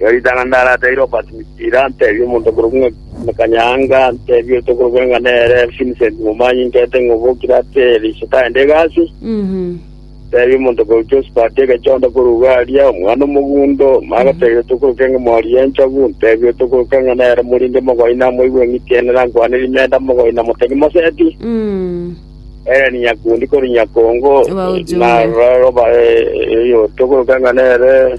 Erio ritang'ani ndarateire Obadimisira, ntebie omonto okorokwa ng'a Kanyanga, ntebie oito okorokwa ng'a nere Vincent Momanyi, nkerete ng'a obo kirate riisiko aende egasi. Ntebie omonto okorokwa Josphat Egechonda korwa Ugaria, omwana omogundo, magoteire oito okorokwa ng'a Mori Enchogu, ntebie oito okorokwa ng'a nere Morindi Mogoina, moigwa eng'itienera, nkwane rimenta Mogoina, motegi moseti, Helen Nyakundi korwa Nyakongo, Wa Ojumbe. na roba oito okorokwa ng'a nere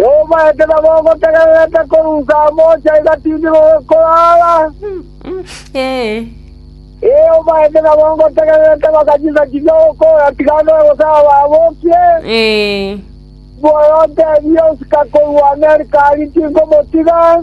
“Yoma ekero gogotegererete korusa amoche aiga tindi gokorara? Yoma ekero gogotegererete bakanyisa chiria okoora tigana oe gose ababokie? Mboyo otebie, osika korwa Amerika aria tinkomotiga.